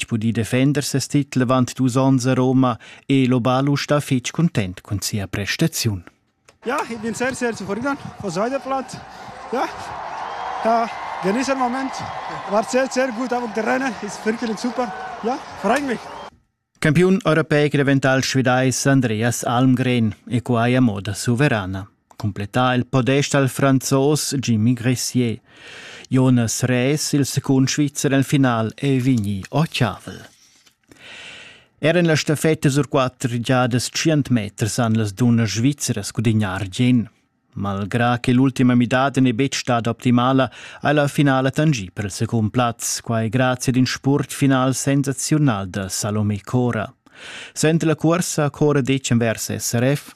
pudì defender ses titel avant dus onns a Roma e Lobalusch da fitg content cun sia prestaziun. Ja, ich bin sehr, sehr zufrieden von Seideplatz. Ja, ja, genieße den Moment. War sehr, sehr gut auf dem Terrain, ist wirklich super. Ja, freut mich. Campiun europeic revental svidais Andreas Almgren e quai a moda suverana. cumplettà il podest dal franzos Jimmy Gressier. Jonas Rees, il secund Svizzer nel final, è vegnì ottavel. Er en la staffetta sur quatter giadas 100 meters han las dunnas svizzeras gudignar argien. Malgrà che l'ultima midada n'è betg stata optimala, ha la finala tangì per il secund plaz, quai grazie ad in spurtfinal sensazional da Salomé Cora. Sente la cursa Cora Decem vers SRF?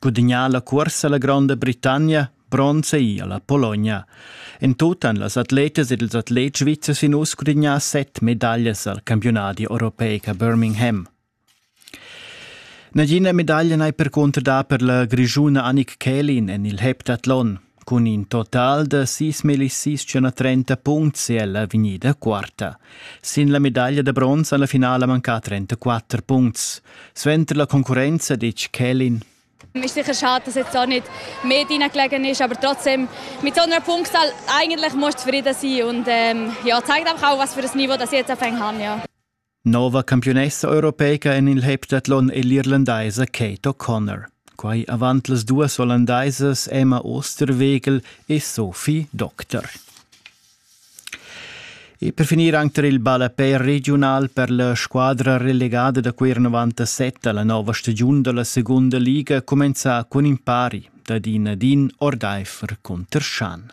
Gudagnà la cuorsa la Gronda Britannia bronza ei alla Pologna. En tut han las atletas ed ils atlets svizzers in uss gudagnà set medaglias al campiunadi europeic a Birmingham. Nagina medaglia n'hai percunter dà per la grischuna Annik Kählin en il heptathlon. Cun in total da sis millisissem a trenta puncts è ella vegnida quarta. Sin la medaglia da bronz han la finala mancà trentaquatter puncts. Suenter la concurrenza ditg Kelin. Es ist sicher schade, dass jetzt auch nicht mehr reingelegen ist, aber trotzdem, mit so einer Punktzahl eigentlich musst du zufrieden sein und ähm, ja, zeigt einfach auch, was für ein Niveau das ich jetzt auf haben. Ja. Nova campiunessa europeica en il heptathlon è l'irlandaisa Kate O'Connor. Quai avant las duas ollandaisas Emma Osterwegel e Sophie Doctor. E per finir anche il ballapè regional per la squadra relegada da quei 97 alla nova stagiun dalla seconda liga comenza con impari da Din Adin Ordeifer contr Schan.